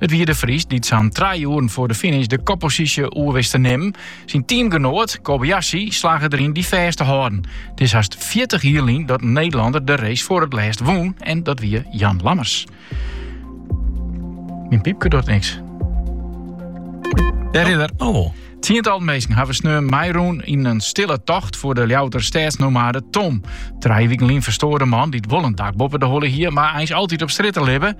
It wie De Vries dy't sa'n trije oeren foar de finish de kopposysje oer wist te nimmen. Syn teamgenoat Kobayashi slagge deryn dy fêst te hâlden. It is hast fjirtich jier lyn dat in Nederlander de race foar it lêst wûn en dat wie Jan Lammers. Myn piepke docht niks. Dêr is er. Oh. Tsientallen minsken hawwe sneon meirûn yn in stille tocht foar de Ljouwerter stedsnomade Tom. Trije wiken lyn ferstoar de man dy't wol in dak boppe de holle hie, mar eins altyd op strjitte libbe.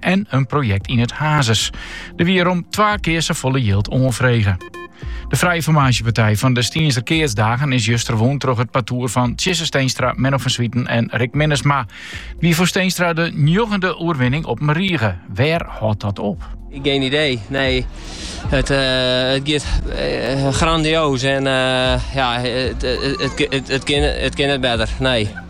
en in projekt yn it Hazes. Der wie rom twa kear safolle jild oanfrege. De frije formaasjepartij fan de Stienzer Keatsdagen is juster wûn troch it partoer fan Tjisse Steenstra, Menno van Zwieten en Rick Minnesma. Wie foar Steenstra de njoggende oerwinning op in rige. Wêr hâldt dat op? Geen idee, nee. Het, uh, het gaat eh, grandioos en eh, ja, het, het, het, het, kan, het kan niet beter, nee.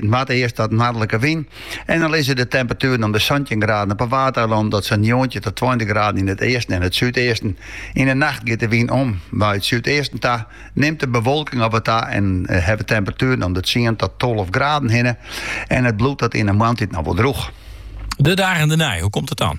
Matige earst dan noardlike wyn en dan lizze de temperatueren om de santjin graden op 'e Waadeilannen tot sa'n njoggentjin ta tweintich graden yn it easten en it súdeasten. Yn 'e nacht giet de wyn om nei it súdeasten ta, nimt de bewolking ek wat ta en ha we temperatueren om de tsien ta tolve graden hinne en it bliuwt dan yn 'e moarntyd noch wol drûch. De dagen dernei, hoe komt it dan?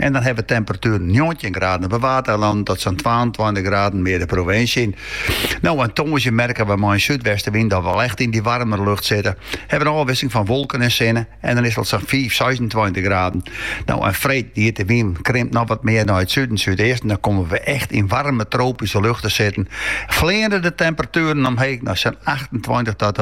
En dan hawwe we temperatueren njoggentjin graden op de Waadeilannen tot sa'n twaentweintich graden mear de provinsje yn. No en tongersdei merke we mei in súdwestewyn dat we al echt yn dy waarmere lucht sitte. Ha we in ôfwisseling fan wolken en sinne en dan is it al sa'n fiif, seisentweintich graden. No en freed giet de wyn krimpt noch wat mear nei it suden, súdeasten, dan komme we echt yn waarme tropyske lucht te sitten. Fleane de temperatueren omheech nei sa'n achtentweintich ta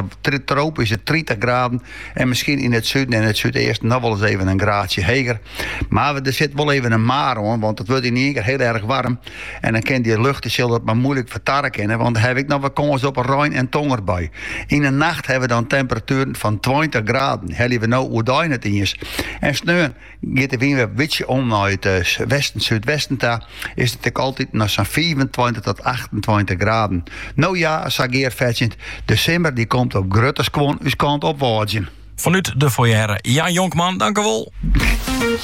tropyske tritich graden. En miskien yn it suden en it súdeasten noch wol ris even in graadsje heger. Mar der sit wol even in mar oan, want it wurdt ynienkear hiel erg warm. En dan kin dy lucht sil dat mar moeilik fertarre kinne, want dêr hawwe wy ek noch wol kâns op rein en tonger by. Yn 'e nacht hawwe we dan temperatueren fan tweintich graden, helje we no oerdein net iens. En sneon Giet de wyn wer in bytsje om nei it westen-súdwesten ta, is it ek altyd noch sa'n fiifentweintich tot achtentweintich graden. No ja, sa gearfetsjend, de simmer dy komt op grutte skuon ús kant op wâdzjen. Fanút de foyer, Jan Jonkman, dankjewol.